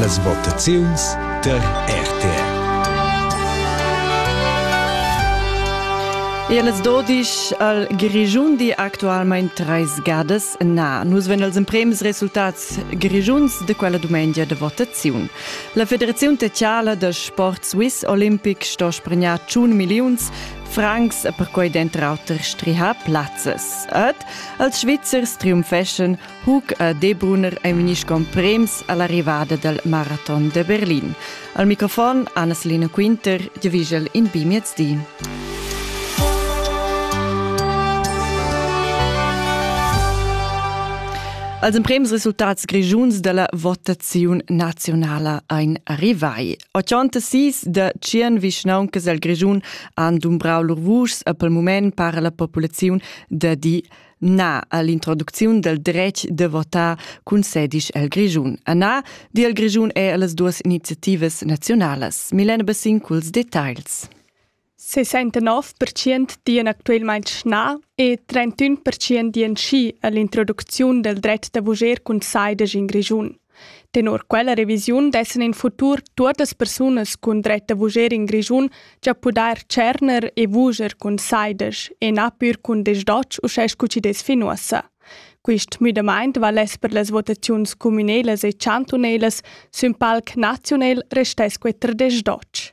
Las votaziuns per RTR. Eles dodisch al Grischun di actualmein treis gadas na. Nus ven als emprems resultats grischuns de quella dumengia de votaziun. La Federaziun Tecciala da Sport Swiss Olympic sto spregnar tschun milliuns francs per quei dentr auter strihar plazzes. Ed als Svizzers triumfeschen Hug a Debrunner è vegnì sco prems a l'arrivada dal maraton da Berlin. Al microfon Anna-Selina Quinter giavigel in bi miezdi. Als emprems resultats grischuns dalla votaziun nazionala ein arrivai. 86 da tschien vischnauncas al Grischun han dumbrau lur vuschs a pel mument para la populaziun da di Na all'introducziun del dretg de votar concedisch el Grischun. A na, di el Grischun è las duas iniziativas nazionalas. Milena Bassin culs dettagls. 69% dian actualmein schna e 31% dian schi all'introducziun del dret da vuger concedisch in Grischun. Tenor quella revisiun dessan in futur tuottas persunas cun dretta vuger in Grischun già pudair tscherner e vuger cun saidesch e na pür cun desdotsch uschè scu chi dess fin uossa. Quist müdamaint valess per las votaziuns cumünelas e chantunelas sün palc naziunel restess que ter desdotsch.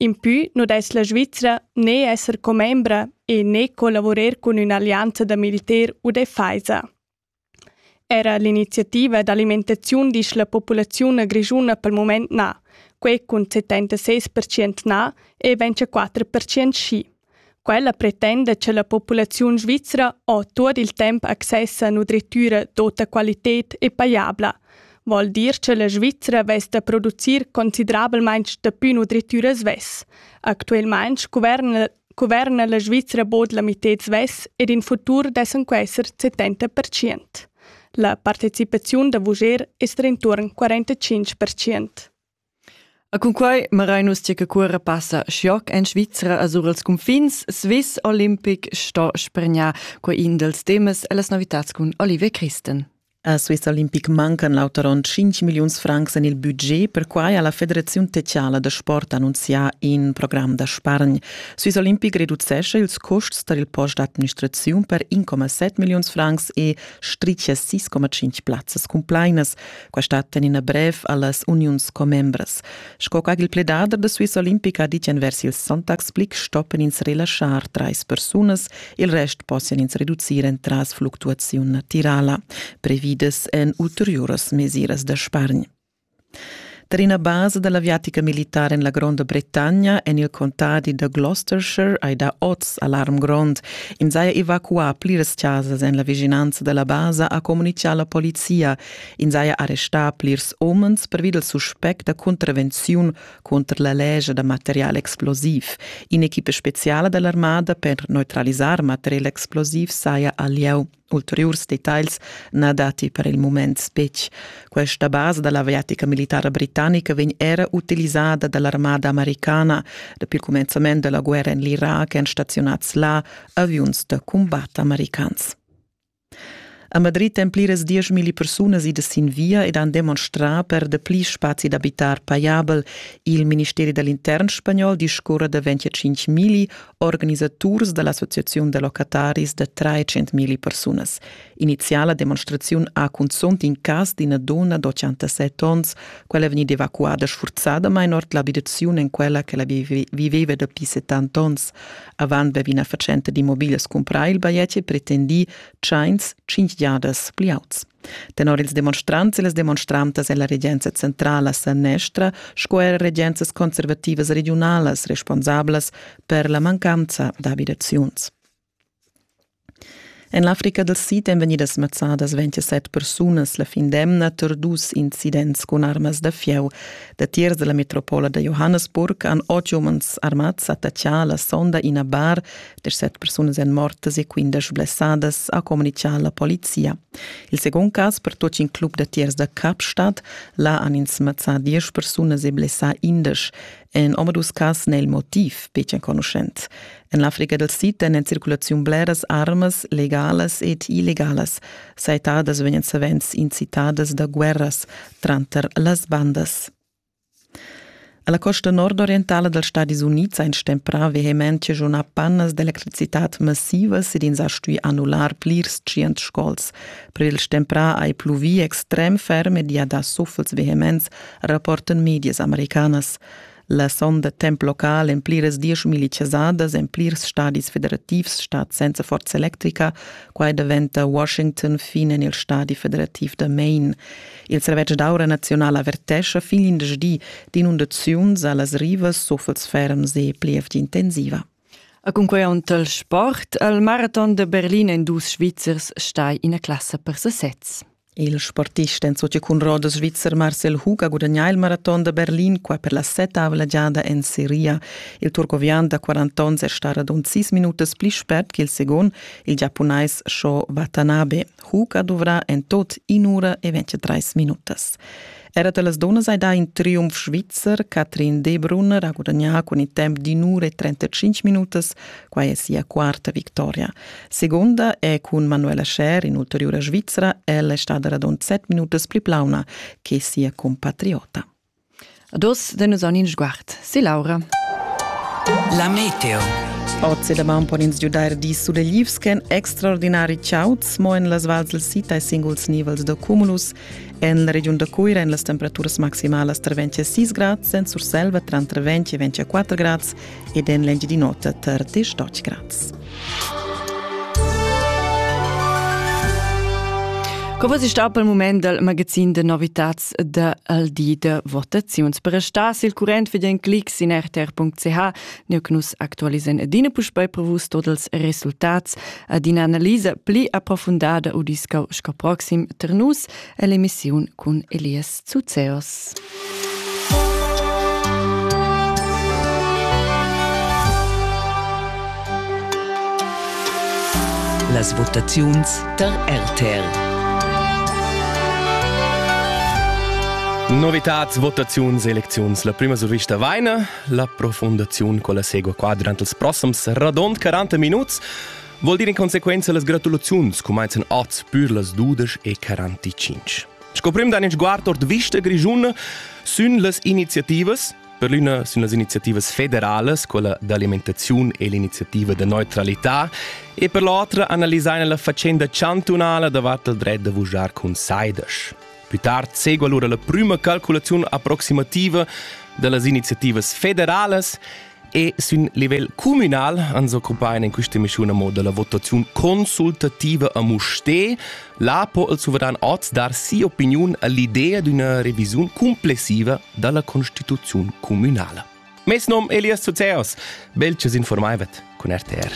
Impü nu dess la Svizra ne esser commembra e ne collavurer cun ün'allianza da militer u deffaisa. Era l'iniziativa d'alimentaziun disch la populaziun grischuna pel mumaint na, quai cun 76% na e 24% schi. Quella pretenda cha la populaziun svizra ho tuot il temp access a nudrittüra d'ota qualited e pajabla, vòl dir cha la Svizra vess da producir considerabelmaing dapü nudrittüra svess. Actuelmaing cuverna cuverna la Svizra bod la mitted svess ed in futur dessan quesser 70 percient. La partecipaziun da vujer es d'intuorn 45 percient. E cunquai marain nus tgei che cuora passa schioc en Svizra a sur els cunfins. Swiss Olympic sto spregnar quei in dels temas e las novitats cun Olivier Christen. A Swiss Olympic mancan l'auter onn 5 milliuns francs en il budget. Perquai ha la Federaziun techiala da sport annunzià in program da spargn. Swiss Olympic reducesce ils custs tar il post d'administraziun per 1,7 milliuns francs e stricia 6,5 plazzas cumplainas. Questa ten ina brev allas uniuns commembras. Sco ch'agil pledader da Swiss Olympic ha dit envers il Sonntagsblick stoppen ins relaschar trais persunas, il rest possian ins reducir entras fluctuaziun natirala, previdas en ulteriuras mesiras da spargn. Per ina basa dall'aviatica militar en la Gronda Bretagna en il contadi da Gloucestershire hai dà oz alarm grond. Ins haja evacuà pliras chasas en la vischinanza dalla basa, ha communitgà la polizia. Ins haja arrestà plirs umens pervi dal suspect da cuntravenziun cunter la lescha da material explosiv. In'equipa speziala da l'armada per neutralisar material explosiv saja al lieu. Ulteriurs dettagls na datti per il mument betg. Questa basa da l'aviatica militara britannica vegn era utilizzada da l'armada americana. Dapi il cumenzament della guerra en l'Iraq èn staziunads là aviuns da cumbat americans. A Madrid èn pliras dieschmilli persunas idas sin via ed han demonstrà per dapli spazi d'abitar pajabel. Il ministeri da l'intern spagnol discurra da 25 milli organisaturs da l'Associaziun da locataris da 300 milli persunas. Iniziala demonstraziun ha cunzunt in cas d'ina donna d'87 onns. Quella è vegnida evacuada sfurzadamain ord l'abitaziun en quella che la viveva dapi 70 onns. Avant be ina fatschenta d'immobiglias cumpra il bajetg e pretendì tschains cinq giadas pli auts. Tenor ils demonstrants e las demonstrantas è la regenza centrala sanestra sco er regenzas conservativas regiunalas responsablas per la mancanza d'abidaziuns. En l'Africa dal Sid èn vegnidas mazzadas ventisset persunas la fin d'emna tar dus incidents cun armas da fieu. Datiers da la metropola da Johannesburg han otg umans armads attaccà la sonda ina bar. Dersett persunas èn mortas e quindesch blessadas, ha communitgà la polizia. Il secund cas per tuts in club datiers da Kapstadt. Là han ins mazzà diesch persunas e blessà indesch. En omadus cas n'è il motiv betg enconuschent. En l'Africa del Sid èn en circulaziun bleras armas, legalas ed illegalas, saitadas vegnan savens incitadas da guerras tranter las bandas. Alla costa nordorientala dels Stadis Units ein stemprà vehemente giunà pannas d'electricitat massivas ed ins ha stui annular plirs tschient scols. Per il stemprà ei pluvì extrem ferm ed i ha dà suffels vehements rapportan medias americanas. La sonda temp local en pliras dieschmilli chasadas en plirs stadis federativs stat senza forza electrica, quai daventa Washington fin en il stadi federativ da Maine. Il servetsch d'aura naziunal avertescha fin indesch di d'inundaziuns a las rivas, suffels ferms e plievgia intensiva. A cunquei il sport al maraton de Berlin en dus Svizzers stai ina classa per sesez. Il sportist en socia cun roda svizzer Marcel Hug ha gudagnà il maraton da Berlin qua per la settavla giada en Seria. Il turcovian da 40 onns è star radund 6 minutas pli spert che il second, il giapunais Sho Watanabe. Hug ha duvrà en tot in'ura e 23 minutas. Era da las dunnas hai dà in triumf svizzer. Catherine Debrunner ha gudagnà cun il temp d'in ura e 35 minutas. Quai è sia quarta victoria. Seconda è cun Manuela Scher, in'ulteriura Svizra. Ella è stada radund set minutas pli plauna che sia compatriota. Dos de nus en in sguard, si Laura. La meteo. Oz da man pon ins giudair dis sudeglivs ch'èn extraordinari chauds, mo en las vals del sita e singuls nivels da cumulus. En la regiun da Cuira èn las temperaturas maximalas tra 20 e 6 grads, en Surselva tranter 20 e 24 grads ed en l'Engiadin'Ota tar 18 grads. Come si sta per il moment dal magazin de novitats del di de votaziuns. Per restar sil current viden clics in rtr.ch Neu che nus actualisen adina puspei prevus tot els resultats ad ina analisa pli approfundada u discau sco proxim ter nus ell'emissiun cun Elias Zuzeos. Las votaziuns tar RTR. Novitads, votaziuns, elecziuns. La prima survista vaina. La profundaziun con la segua qua durant els prossums radond 40 minuts vuol dir in consequenza las gratulaziuns cumaizan oz pür las 12 e 45. Scoprim da in sguard ord vista grigiuna sün las iniziativas per l'una sun las iniziativas federales, quella d'alimentazione e l'iniziativa de neutralità, e per l'altra analisaina la faccenda chantunala davart il dret de vujar cun saidas. Pli tard segua lura la prüma calculaziun approximativa da las iniziativas federalas e sin livel communal ans occupain in questa emissiun a moda la votaziun consultativa a Mustè. Là po il suveran oz dar sia opiniun all'idea d'una revisiun complessiva da la Constituzione communale. Mes nom Elias Zuzeos. Belches informaivet con RTR.